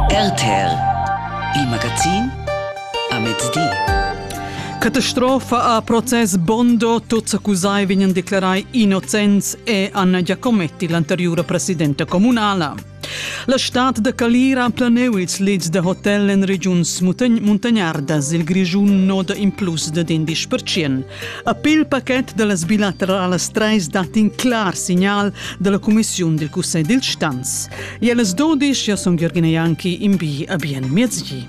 RTR Il magazin a mezdi. Catastrofa a process Bondo, tuts accusai vegnan declarai innocents e Anna Giacometti, l'anteriura presidenta comunala. La stad da Calira ha planeu ils lids da hotel en regiuns muntagnardas il Grischun noda in plus da 10%. A pil paquet da las bilateralas trais dat in clar signal da la cumissiun dil Cussegl dil Stanz. E las dodisch, io sun Jürgen Janki, in bi a bien miezgi.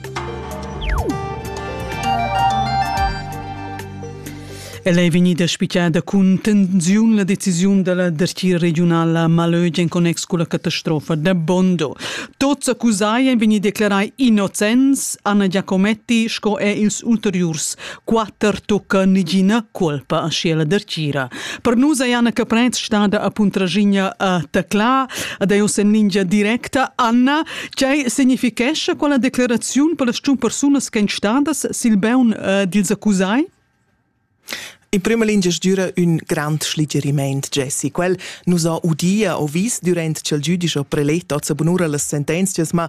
El è vegnida spiccada cun tensiun la decisiun della dertia regionala Malöge in connex con la catastrofa da Bondo. Tots accusai han vegnì declarai innocents Anna Giacometti sco er ils ulteriurs quatter tocca negina colpa a schiela dertgira. Per nus è Anna Caprez stada a Puntraginha a Tacla, ad ei en lingia directa. Anna, tgei significhescha quella declaraziun per las persunas ch'en stadas sil beun eh, dils accusai? In prima lingia dura un grand schligeriment, Jesse. Quel nos ha udia o vis durant ch'el giudisch o prelet ozza bunura las sentenzias, ma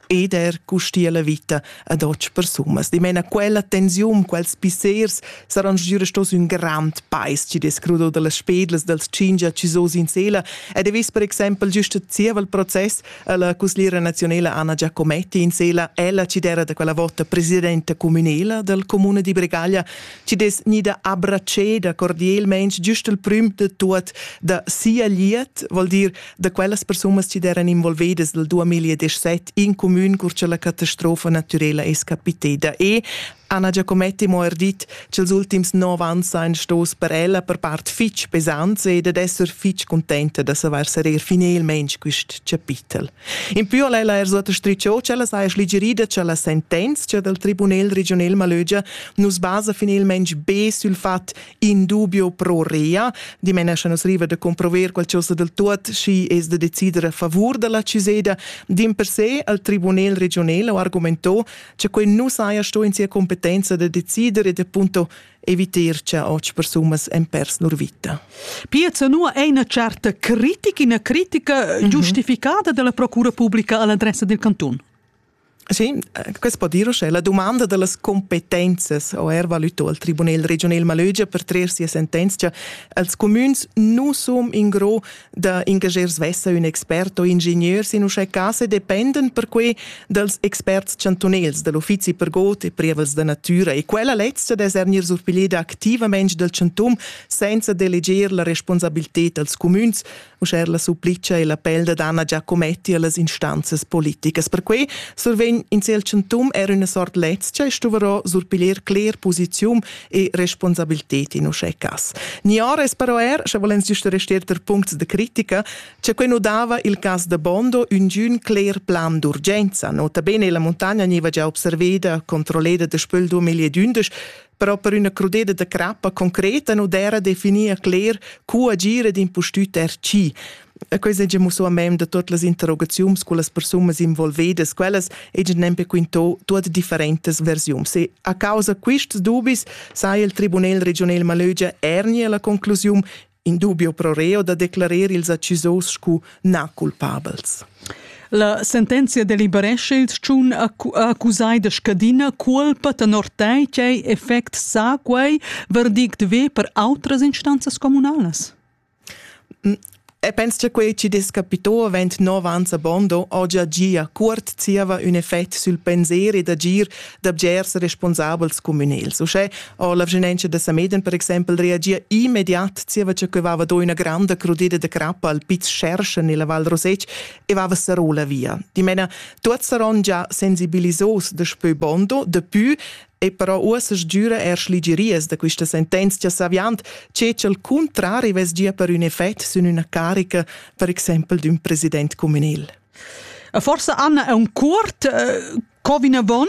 ed er custia la vita ad otg persunas. Dimena quella tensiun, quels pissers saran giura stos un grand pais ci descrudo da las spedlas dals cingia ci so sin sela ed e vis per exempel giusto zievel proces alla cuslira nazionela Anna Giacometti in sela ella ci dera da quella vota presidenta comunela del comune di Bregaglia ci des nida abbraceda cordielment giusto il prim de tuot da sia liet, vol dir da quellas persunas chi d'eran involvedas dal 2017 in cumün cur cha la catastrofa natürela es capiteda e Anna Giacometti mo er dit ch'ils ultims nov ans sajan stos per ella per part fich pesants ed ad esser fich contenta da savair sareir finelmaing quist chapitel. In pü al ella er suota stricho ch'ella saja schligerida cha la sentenza dal Tribunel regional Malögia nu's basa finelmaing be sül fat in dubio pro rea. Dimena nus riva de comprover qualcosa del tuot schi es de decider a favor della ceseda. Din per se al tribunel regional ho argumento che quei nu saja sto in sia competenza de decider e de punto eviter che och persumas en pers nur vita. Piazza nu è una certa critica, una critica mhm. giustificata della procura pubblica all'adressa del canton. Sì, questo può dire che la domanda delle competenze o er valuto al Tribunal regional Malögia per traer sia sentenza als comüns nu som in gro da engager svessa un expert o ingenieur sin uschè case dependen perquei dals experts chantunels dell'uffizi per god e prievels da natura e quella lezza d'esernir surpiglieda activamente dal chantum senza deleger la responsabilità als comüns Uschè la supplica e l'appel da Anna Giacometti a las instanzas politicas. Perquai survegn in siel chantum er üna sort lezcha e stuverò surpiglier cler posizium e responsabilted in uschè cas. Nior es però er, sche volens giusta restier ter puncts de critica, che quei nu dava il cas da Bondo üngün cler plan d'urgenza. Nota bene la montagna gneva già observeda, controlleda de spöl 2011, però per üna crudeda da crappa concreta nu d'era definir cler cu agir ed impustüt er chi. E questa è musso a mem da tutte le interrogazioni con le persone involvate, quelle è nempe quinto tutte differentes versioni. Se a causa questi dubbi sai il Tribunal regional Malögia ernie la conclusione in dubio pro reo da declarer ils accisos scu na culpabels. La sentenzia deliberesce il tschun accusai da scadina culpa tenor tei ch'ei effect sa quei verdict ve per outras instanzas comunalas. E penso che quei ci descapito avent nov ans a Bondo oggi gia cuort zieva un effect sul pensieri d'agir da bgers responsabels communals. Uschè ha la vischinanza da Sameden per exempel reagia immediat zieva che que vava do üna granda crudida de crappa al Piz Scherschen nella Val Rosec e vava sarò la via. Dimena, tuots saron già sensibilisos daspö Bondo, dapü e però uossa sgiüra er schligerias da quista sentenzia saviand che al contrari ves gia per ün effet sün üna carica, per exempel d'ün president communal. Forse Anna è un curt, eh, Co vinavon?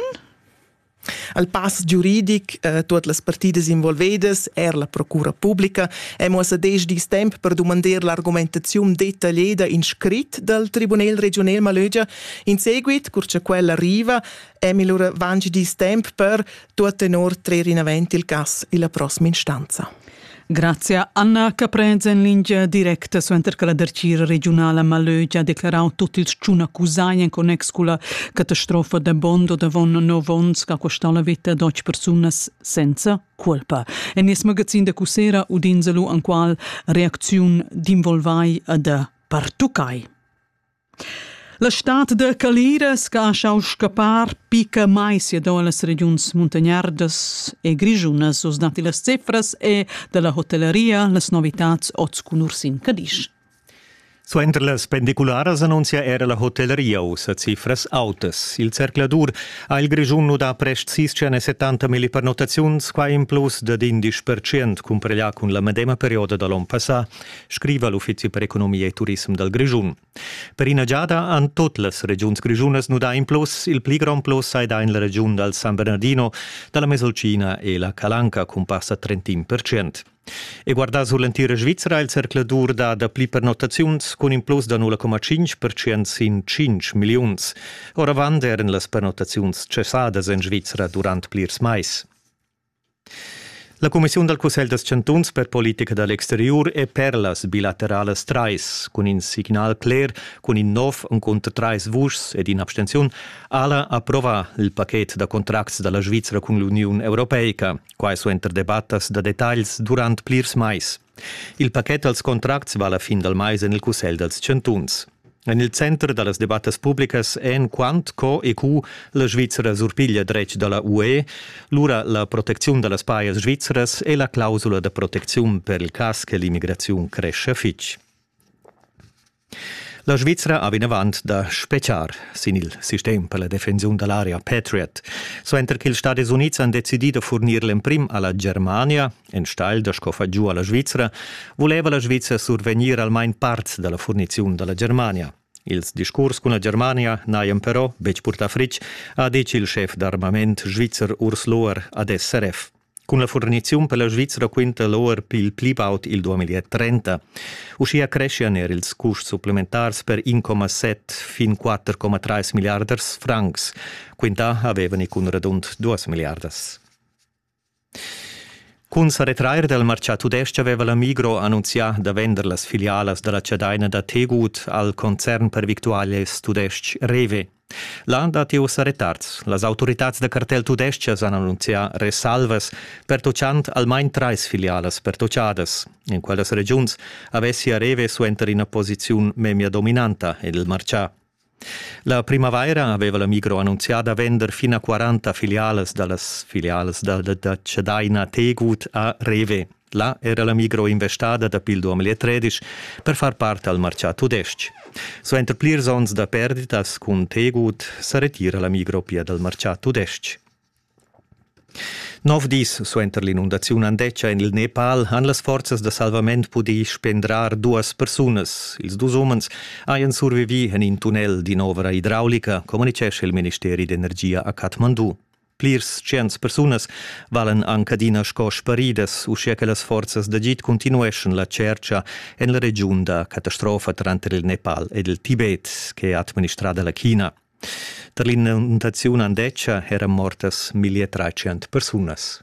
Al pass giuridic eh, tuot las partidas involvedas, er la procura publica, è muossa desch dis temp per dumandar l'argumentazione detagliada in scrit dal Tribunal regional Malögia. In seguit, cur che quella arriva, è allora vanci dis temp per tuot tenor trer in avanti il cass illa prossima instanza. Grazia Anna che prends en lingia directa suenter che la dertgira regiunala Malögi ha declarau tutti ils tschun accusai en connex con la catastrofa de Bondo davon nov onns che ha costau la vita de otg persunas senza colpa. En nies magazin de Cusera udins lu an qual reacziun d'involvai ad pertuccai. La stad da calira sgaschau scappar picca mai siadon las regiuns muntagnardas e grischunas. Oz datti las cifras e dalla hotellaria las novitats oz cun Ursin Cadisch. Suenter las pendicularas annunzia era la hotellaria ussa cifras autas. Il zercladur ha il Grischun nudà prest sis e 70 milli pernottaziuns, qua in plus dad 11% cumpareglià cun la medema perioda da l'onn passà. scriva l'Uffizi per economia e turism dal Grischun. Per ina giada han tot las regiuns grischunas nudà in plus, il pli grond plus sai dà in la regiun dal San Bernardino, dalla Mesolcina e la Calanca cun passa 31%. E guardà sur l'entira Svizzera il zercladur da dapli pernottaziuns cun in plus da 0,5% sin 5 milliuns. Oravant eran las pernottaziuns cessadas en Svizzera durant plirs mais. La cumissiun dal Cussegl da chantuns per politica da l'exteriur è per las bilateralas trais. Cun in signal cler, cun in nov encunter trais vuschs ed in'abstenziun, Ala approvà il pachet da contracts da la Svizra cun l'Uniun europeica. Quai suenter debattas da detagls durant plirs mais. Il paquet als contracts va la fin dal mais en il Cussegl dals chantuns. En il center da las debattas publicas èn quant co e cu la Svizra surpiglia dretg da la UE, lura la protecziun da las pajas svizras e la clausula da protecziun per il cas che l'immigraziun crescha fitg. La Svizra ha vinavant da spetgar sin il sistem per la defensiun da l'area Patriot. Suenter ch'ils Stadis Unids han decidì da furnir l'emprim a la Germania, enstagl da sco far giu a la Svizra, vuleva la Svizra survegnir almain parts da la furniziun da la Germania. Ils discurs cun la Germania n'hajan però betg purtà fritg, ha ditg il schef d'armament svizzer Urs Lohr ad SRF. Cun la furniziun per la Svizra quinta l'ORP il pli baud il 2030. Uschia creschian er ils custs supplementars per 1,7 fin 4,3 milliarders francs. Quintà avevano i cun radund 2 miliardas. Cun sa retrair dal martgà tudestg aveva la Migro annunzià da vender las filialas da la chadaina da Tegut al concern per victualias tudestg Rewe. Là datti ussa retards. Las autoritads da cartel tudestgas han annunzià resalvas, pertutgant almain trais filialas pertutgadas. In quellas regiuns avessia Rewe suenter ina posiziun memia dominanta ed il martgà. La primavaira aveva la Migro annunzià da vender fin a 40 filialas da las filialas da, da, da Cedaina Tegut a Rewe. Là era la migro investada dapi il 2013 per far part al martgà tudestg. Suenter plirs onns da perditas cun Tegut sa retira la migro pia dal martgà tudestg. Nov dis suenter l'inundaziun Andeccia en il Nepal han las forzas da salvament pudì spendrar duas persunas. Ils dus umens hajan survivì en in tunnel d'in'ovra idraulica, communitgescha il ministeri d'energia a Kathmandu. Plirs tschients persunas valen anc adina sco sparidas, uschia che las forzas d'agid continueschan la tschertga en la regiun da catastrofa tranter il Nepal ed il Tibet, che ha administrada la China. Tar l'inundaziun Andetscha eran mortas 1300 persunas.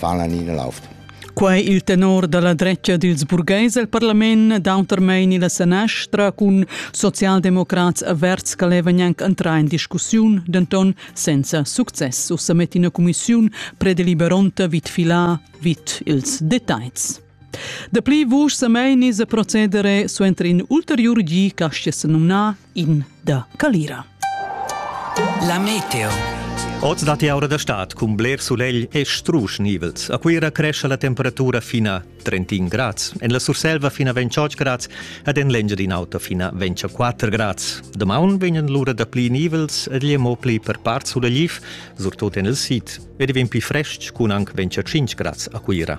valan ina lauft. Quai il tenor da la dretga dils burgheis el parlament d'autermein ina senestra cun socialdemocrats averts che levan anc entrar in discussiun, denton senza success. Ussa met ina cumissiun predeliberonta vid filar vid ils detalls. Dapli vusch semeini se procedere suenter in ulteriur gi castia senumna in da Calira. La meteo. Oz dat aura da stad cun bler sulegl e strusch nivels. A Cuira cresce la temperatura fina 31 grads, en la Surselva fina 28 grads ed en l'Engiadin'Auta fina 24 grads. Damaun vegnan l'ura da pli nivels ed gli mo pli per part sulegliv, surtut en il sid, ed vegn pli frestg cun anc 25 grads a Cuira.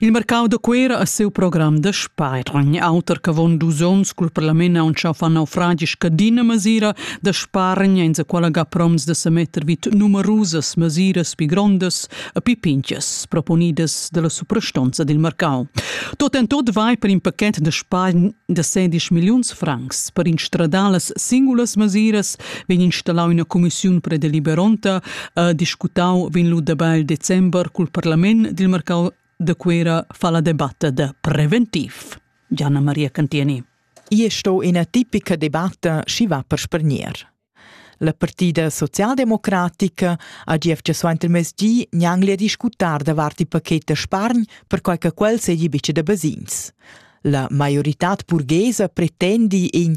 Il marcau da Cuera ha siu program da spargn, auter ch'avon dus onns cul parlament ha aunchau fa naufragi scadina masira da spargn, enza quella ga proms da semetter vid numerusas masiras pi grondas e pi pinchas proponidas dalla suprastonza dil marcau. Tot en tot vai per in paquet da spargn da 16 milliuns francs. Per instradalas singulas masiras vegn installau ina commissiun predeliberonta ha discutau vegn lu dabel december cul parlament dil marcau de Cuera fa la debatta de preventiv. Gianna Maria Cantieni. Ia sto ina tipica debatta schi va per spergner. La partida socialdemocratica ha gief suant il mesdi gnangli a discutar davart il paket da spargn per quai che quel segi bice da basins. La maiorità burghesa pretendi in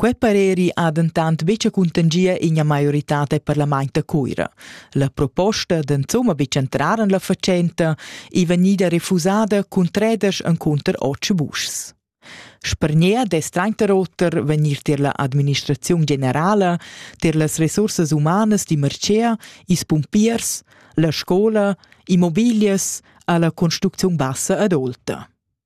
Quei pareri ha dentant buca cuntangia ina maioritad e parlament da Cuira. La proposta d'enzuma buca entrar en la fatschenta ei vegnida refusada cun treders encunter otg vuschs. Spargner dess tranter oter vegnir tier la administraziun generala, tier las resursas humanas di Mercea, is pumpiers, la scola, immobilias alla construcziun bassa adolta.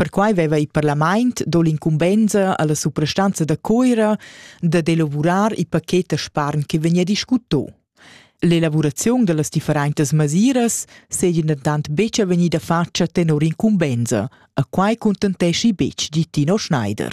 Perquai veva il parlament do l'incumbensa alla suprastanza da Coira da d'elavurar il paquet da spargn che vegnia discuto. L'elaborazione delle differentes masiras seigien tant betg vegnida fatga tenor incumbensa, a quai contenteschi betg di Tino Schneider.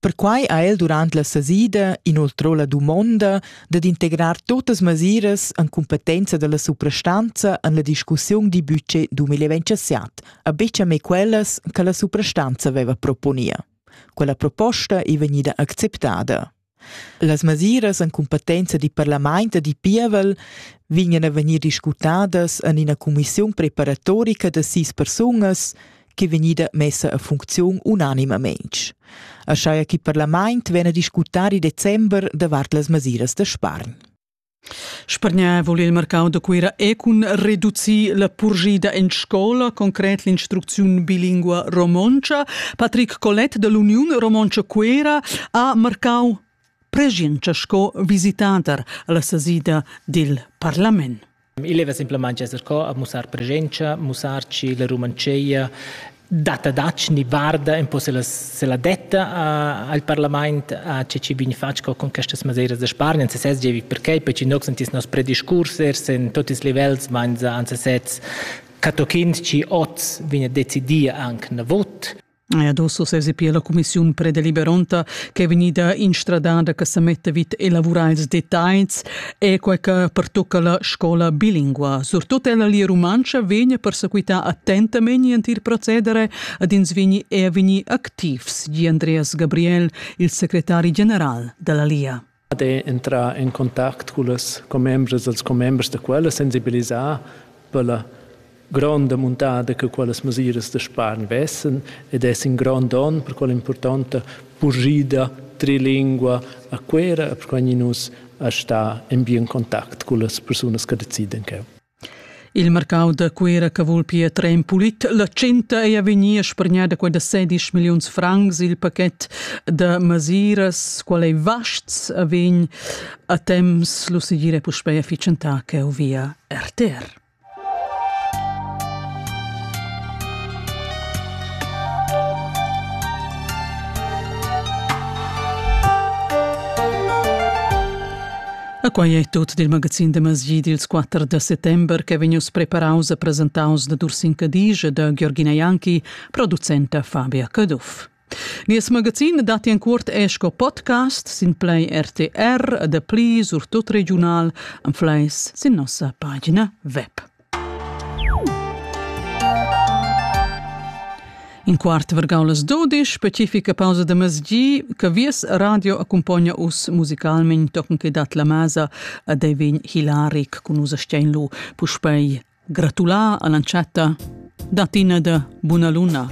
Perquai ha el durant la sesida inoltrò la dumonda dad integrar tuttas mesiras en cumpetenza dalla suprastanza en la discussiun dil budget 2027, a buca mei quellas che la suprastanza veva proponia. Quella proposta ei vegnida acceptada. Las mesiras en cumpetenza dil parlament e dil pievel vegnan a vegnir discutadas en ina cumissiun preparatorica da sis persunas che vegnida messa a funcziun unanimamein. Aschia che il parlament vegna discutar il december davart las mesiras da spargn. Spargnar vul il mercau da Cuira e cun reducir la purgida en scola, concret l'instrucziun bilingua romontscha. Patrick Collet dall'Uniun Romontscha Cuira ha marcau preschientscha sco visitader alla sesida dil parlament. Il leva simplamain esser co a mussar presenza, mussarci la Romanceia data dac ni varda un po se la, se la detta a, al parlament a ce ci vini fatg co con questas masiras de spargnen se ses jevi perché perché noi sentis nos prediscursers in tutti i livels meins an se sets catochind ci oz vine decidia anche na vot Adesso sesi pia la cumissiun predeliberonta che è vegnida instradada che sa metta vid elavurar ils dettagls e quai che pertocca la scola bilingua. Surtut ella lia rumantscha vegna persequità attentament il procedere ad ins vegni e vegni activs, di Andreas Gabriel, il secretari general della Lia. Ad è entrà en contact cullas commembras dals commembers da quella, sensibilisà per la gronda muntada che quellas mesiras da spargn vessen ed es in grond onn per quella importanta purschida trilingua a Cuera, perquai nus a sta en bien contact cullas persunas che decidan cheu. Il marcau da Cuera che vul pia trer en pulit la tschenta ei a vegnir spargnada quella sedisch milliuns francs. Il paquet da masiras, qual ei vasts, vegn a temps lu segir e puspei a fitschentar cheu via RTR. E quai è tut dil magazin da masjid ils 4 da settember che vegnius preparaus e presentaus da Dursin Cadige e da Georgina Janki, producenta Fabia Caduff. Nies magazin dat en cuort è sco podcast sin play RTR e da pli surtut regional en fleis sin nossa pagina web. In quart vargau las dudisch, specifica pausa da masgi, che vies radio accumpogna us musicalment tochen che dat la masa a Devin Hilaric cun us a Steinlu. Puspei gratular all'entschatta da Tina da Buna Luna.